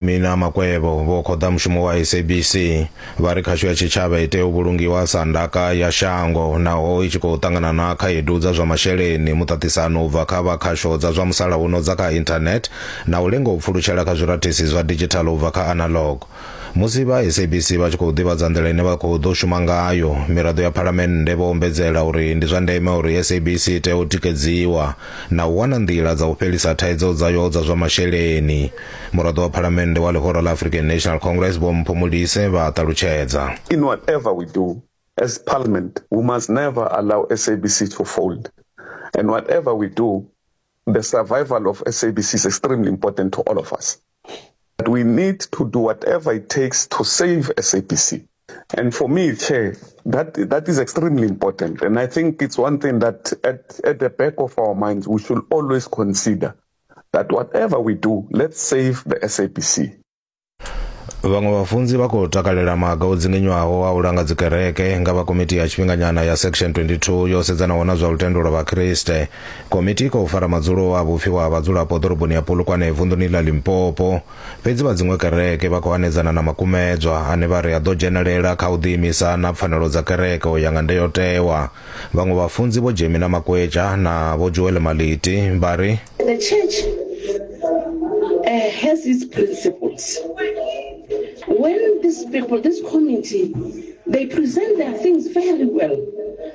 Mina Makwevho vho khoḓa mushumo wa SABC vha ri khasho ya tshitshavha i tea u vhulungiwa sa ndaka ya shango naho i tshi khou ṱangana na khaedu dza zwa masheleni, muṱaṱisano u bva kha vha khasho dza zwa musalauno dza kha internet na u lenga u pfulutshela kha zwirathisi zwa digital u bva kha analog. Musi vha SABC vha tshi khou ḓivhadza nḓila ine vha khou ḓo shuma ngayo, miraḓo ya Phalamennde vho ombedzela uri ndi zwa ndeme uri SABC i tea u tikedziwa na u wana nḓila dza u fhelisa thaidzo dzayo dza zwa masheleni muraḓo wa phalamennde wa ḽihoro ḽa african national congress vho mpho mulise vha ṱalutshedza In whatever we do as parliament, we must never allow SABC to fold. And whatever we do, the survival of SABC is extremely important to all of us. But we need to do whatever it takes to save SABC. And for me, Chair, that, that is extremely important. And I think it's one thing that at, at the back of our minds, we should always consider that whatever we do, let's save the SABC. vhaṅwe vhafunzi vha khou takalela maga o dzinginywaho a u langa dzikereke nga vha komiti ya tshifhinganyana ya section 22 yo sedzanaho na zwa lutendo lwa vhakriste Komiti i khou fara madzulo a vhupfiwa ha vhadzulapo ḓoroboni ya Polokwane vunḓuni ḽa Limpopo. Fhedzi vha dziṅwe kereke vha khou hanedzana na makumedzwa ane vha ri a ḓo dzhenelela kha u ḓiimisa na pfanelo dza kereke u ya nga ndayotewa. Vhaṅwe vhafunzi Vho Jemina Makwetja na Vho Joel Maliti vha ri. The church uh, has its principles. When these people, this committee, they present their things very well.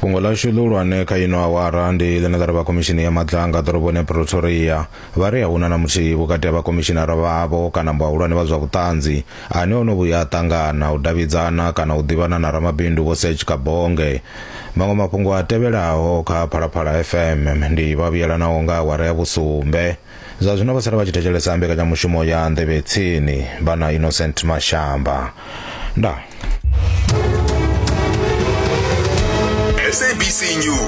fhungo ḽashu ḽihulwane kha ino awara ndi ḽine ḽa ri vha khomishini ya madlanga ḓoroboni ya pretoria vha ri a huna na muthihi vhukati ha vhakomishinara vhavho kana vhahulwane vha zwa vhuṱanzi ane o no vhuya a ṱangana u davhidzana kana u ḓivhana na ramabindu vho sech kabonge maṅwe mafhungo a tevhelaho kha phalaphala fm ndi vhavhuyelanaho nga awara ya vhusumbe Zwa zwino vha sala vha tshi thetshelesa mbekanyamushumo ya Nḓevhe Tsini vha na Innocent Mashamba. Ndaa. SABC News.